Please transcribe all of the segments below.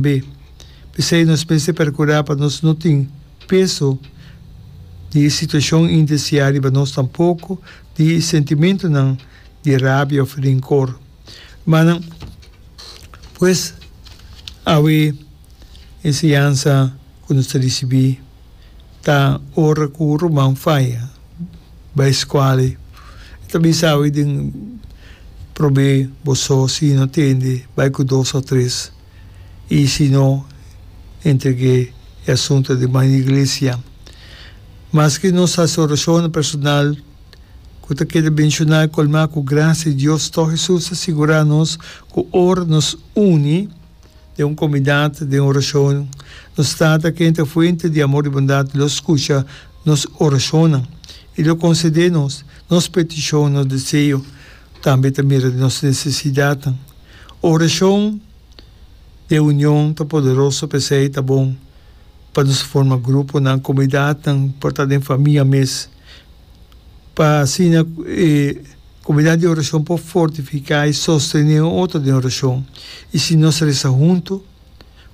Be. P'esei nos mester perkurá pa nos no tin peso di e situashon indesiá riba nos tampoko di sentimentunan di rabia òf rinkor. Rumannan, pues awe enseñansa ku nos ta risibí ta ora ku un ruman faya bai skual e ta bisa, Awe den prob'é bo so, sino tende bai ku dos òf tres. y si no entregue e asunto di man iglesia. Maske nos sa su oracionnan personal cu ta keda menciona y colma cu gracia di Dios, to Jesús ta sigura nos cu ora nos uni den un comunidad den oracion, nos Tata ken ta fuente di amor y bondad lo scucha nos oracionnan y lo concede nos nos petición, nos deseo. Tambe ta mira di nos nesesidatnan. Orashon den union ta poderoso, p'esei ta bon pa nos a forma gruponan, komunidatnan, por ta den famia mes, pa asina e komunidat di orashon por fortifiká i sostené un otro den orashon. I si nos resa huntu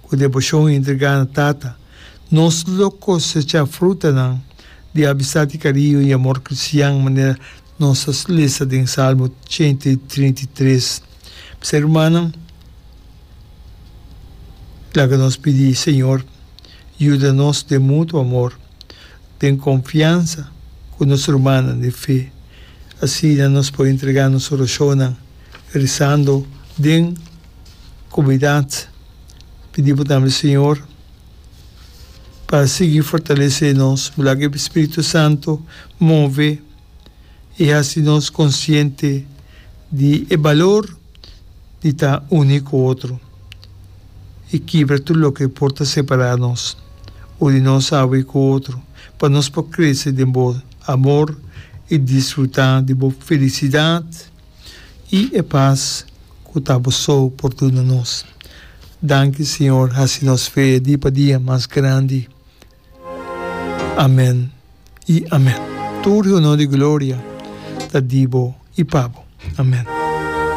ku deboshon i entregá na Tata, nos lo kosechá frutanan di amistad i kariño i amor kristian, manera Nos a lesa den Salmo ciento y trinta y tres. P'esei, rumannan, laga nos pidi Señor yuda nos den mutuo amor, den confiansa cu nos rumannan di fe. Asina nos por entrega nos oracionnan rezando den comunidad. Pidi bo tambe Señor pa sigui fortalece nos, bo laga e Spiritu Santo move. I hasi nos konsiente di e balor di ta uni ku otro i kibra tur loke por ta separá nos o di nos hawe ku otro, pa nos por krese den bo amor i disfrutá di bo felisidat i e pas ku ta bo so por duna nos. Danki, Señor, hasi nos fe dia pa dia mas grandi. Amen y amen. Tur honor y gloria ta di bo y pa bo. Amen.